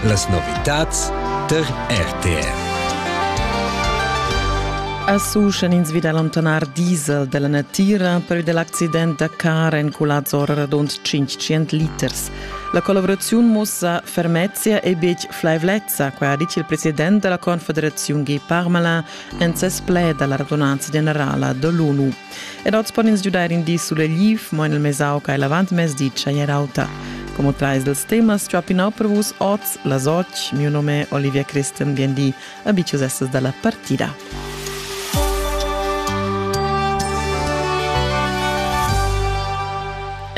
Las novitads tar RTR. Asu schan ins vida allontanar diesel della natira per dell'accident da car en Culazzor radund 500 liters. La collaborazione mussa fermezia e bic flaivlezza, quai ha dit il president della Confederazione Gay Parmalin en ses pled alla radunanza generala dell'ONU. Ed oz pon ins giudair in di sulegliv, mo en il mesau che è l'avantmezdi tschagner auta. Come trais dels temas ciappinau per vus oz las otg. Mio nome è Olivia Christian Gandhi. Abicius essas dalla partida.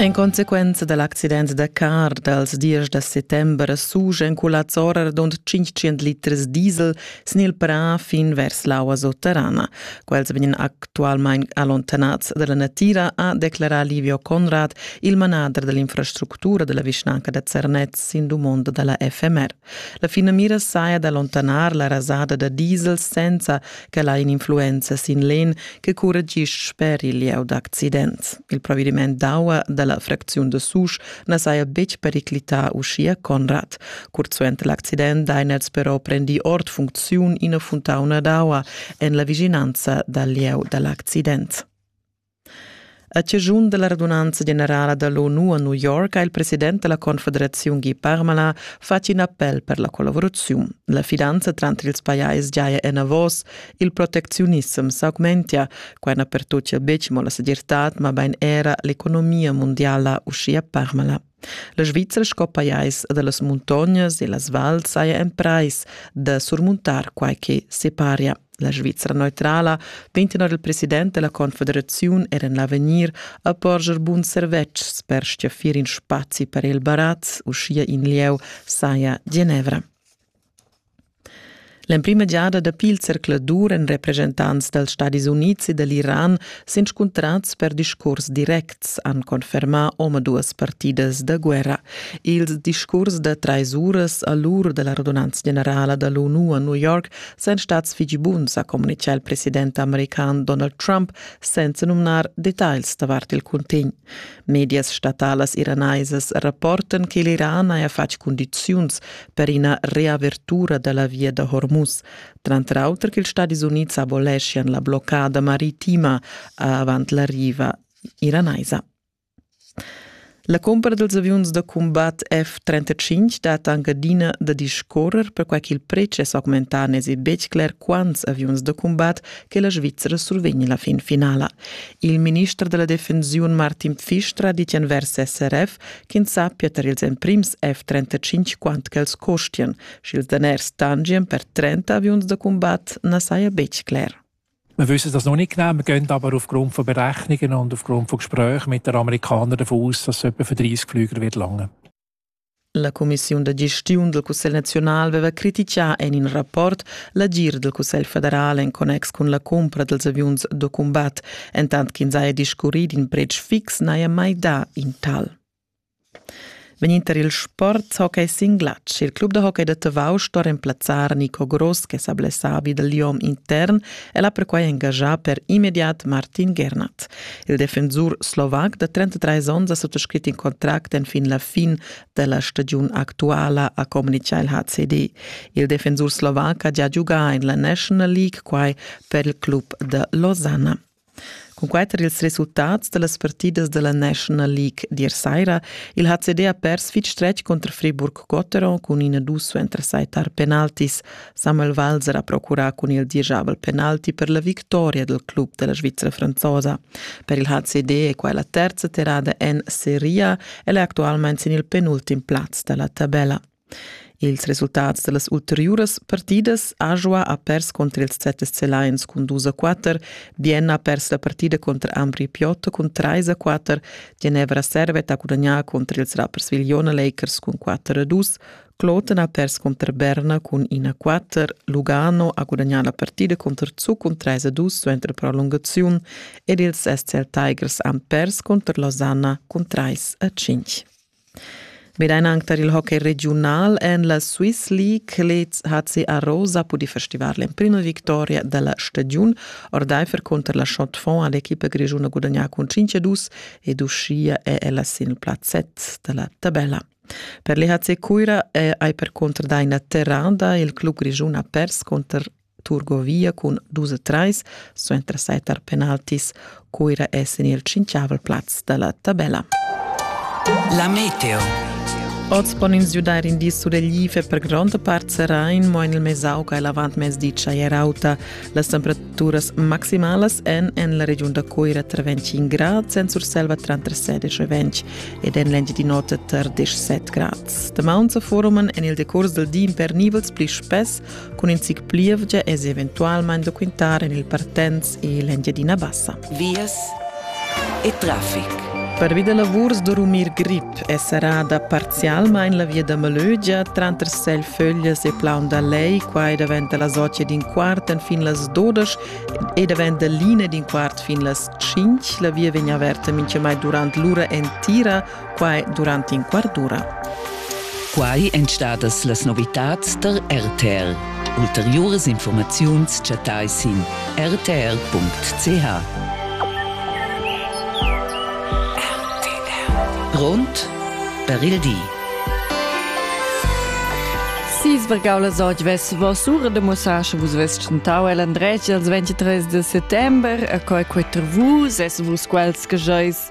En consequenza dal accident da car dals diesch da settember sugen culazzora dond 500 liters diesel sin il prà fin vers l'aua sotterrana. Quels vegnan actualmain allontanats dalla natira, ha declarà Livio Conrad, il manader dell'infrastruttura della vischnanca da Zernez sin dumonda dalla FMR. La finamira saja d'allontanar la rasada da diesel senza che la in influenza sin l'en che curregisce per il lieu d'accident. Il provvediment d'aua della fracziun de Susch na saja betg periclità uschia Conrad. Curt suenter l'accident Diners però prendi ord funcziun ina funtauna d'aua en la vischinanza dal lieu da l'accident. A cigiun della radunanza generala dall'ONU a New York ha il president della Confederazione Guy Parmala fatg in appel per la collaborazione. La fidanza tranter ils pajais giaja en avos Il protecziunissem s'augmentia, quai na pertochia betg mo la segirtad, mabain era l'economia mundiala uschia permala. La Svizzera sco pajais da las muntognas e las vals saja emprais da surmuntar quai che separia. La Svizzera neutrala vegn tenor il president della Confederaziun er en l'avegnir a porscher bun servetschs per stiafir in spazi per il barat, uschia in lieu saja Genevra. L'emprima giada dapi il zercladur èn represchentants dals Stadis Unids e da l'Iran s'inscuntrads per discurs directs, han confermà omaduas partidas da guerra. Ils discurs da trais uras a l'ur da la radunanza generala da l'ONU a New York sain stads fitg buns, ha communitgà il president american Donald Trump, senza numnar detagls davart il cuntegn. Medias statalas iranaisas rapportan che l'Iran haja fatg cundiziuns per ina reavertura da la via da Hormuz, tranter auter ch'ils Stadis Unids aboleschian la bloccada maritima avant la riva iranaisa. La cumpra dels aviuns da combat F-35 dat anc adina da discorrer perquai ch'il pretsch è s'augmentà, n'èsi betg cler quants aviuns da combat che la Svizra survegn la fin finala. Il minister della defensiun Martin Pfister ha dit envers SRF ch'ins sappia tar ils emprims F-35 quant ch'els costian, sch'ils daners tangien per 30 aviuns da combat na saja betg cler. Wir wissen das noch nicht genau. Wir gehen aber aufgrund von Berechnungen und aufgrund von Gesprächen mit den Amerikanern davon aus, dass es etwa für 30 Flüger wird lange. La cumissiun da gestiun dal Cussegl naziunal veva critichà en in rapport l'agir dal Cussegl federal en connex cun la cumpra dals aviuns da cumbat, entant ch'ins haja discurrì d'in pretsch fix n'haja mai dà in tal. Vegninter il sport hockey sin glatsch. Il club da hockey da Tavau sto remplazzar Nico Gross che sa blessavi da liom intern e l'ha perquai engagà per immediat Martin Gernat. Il defensur slovac da 33 onns ha suttascrit in contract enfin la fin da la stagiun actuala, ha communitgà il HCD. Il defensur slovac ha già giugà en la National League, quai per il club da Losanna. Cun quai tar ils resultats da las partidas da la National League d'ir saira, il HCD ha pers fitg stretg cunter Friburg-Gotteron cun ina dus suenter sai tar penaltis. Samuel Valls era procurà cun il dirigiabel penalti per la victoria del club della Svizzera franzosa. Per il HCD è qua la terza tirata en Serie e è attualmente sin il penultim plaz dalla tabella. Ils resultats dellas ulteriuras partidas Ajoa ha pers contro ils ZSC Lions cun 2 a 4, Vienna ha pers la partida contro Ambri Piotto cun 3 a 4, Ginevra Servet ha gudagnà contro ils Rapperswil Jona Lakers cun 4 a 2, Kloten ha pers cunter Berna cun ina quatter, Lugano ha gudagnà la partida cunter Zug cun trais a dus suenter prolungaziun ed ils SCL Tigers han pers cunter Losanna cun trais a cinc. Medein anc tar il hockey regiunal en la Swiss League lez HC Arosa pudì festivar l'emprima victoria da la stagiun. Ordaifer cunter la Schotfond ha l'equipa grischuna gudagnà cun 5 a 2 ed uschia è ella sin il plazzet da la tabella. Per l'EHC Cuira è ei percunter da ina terrada il club grischun ha pers cunter Turgovia cun dus e treis suenter setar penaltis. Cuira è sin il cinquiavel plaz dalla tabella. La meteo. Oz pon ins giudar in di suleglive per gronda part serain, mo en il mesauca e l'avantmezdi tschai er auta. Las temperaturas maximalas èn en la regiun da Coira tra 25 grads, en Surselva tra 16 e 20 ed en l'Engiadin'Ota tar 17 grads. Damaun sa foruman en il decurs dal di impernivels pli spess cun in zic plievgia e eventualmain da quintar en il Partenz e l'Engiadina Bassa. vias e traffic. Pervi da lavurs da rumir grip è serrada parzialmain la via da Malögia tranter Selföglias e Plaun da Lei. Qua daventa la socia d'in quart fin las dodas e daventa l'ina d'in quart fin las cinc. La via vegn averta mintgamai durant l'ura entira quai durant in quart d'ura. Quai èn stadas las novitads tar RTR. Ulteriuras informaziuns chattai sin rtr.ch. Grond per il di. Si sbergau las oggi vess vos ura de musache vus ves chantau el andretg els 23 de settember a coi quater vus es vus quels che jois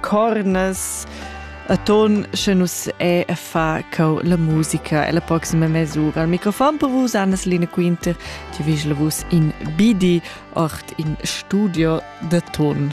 cornas Aton sche nus è a fa cau la musica e la proxima mesura. Al microfon per vus Annas Lina Quinter, ti vis la vus in bidi ort in studio de ton.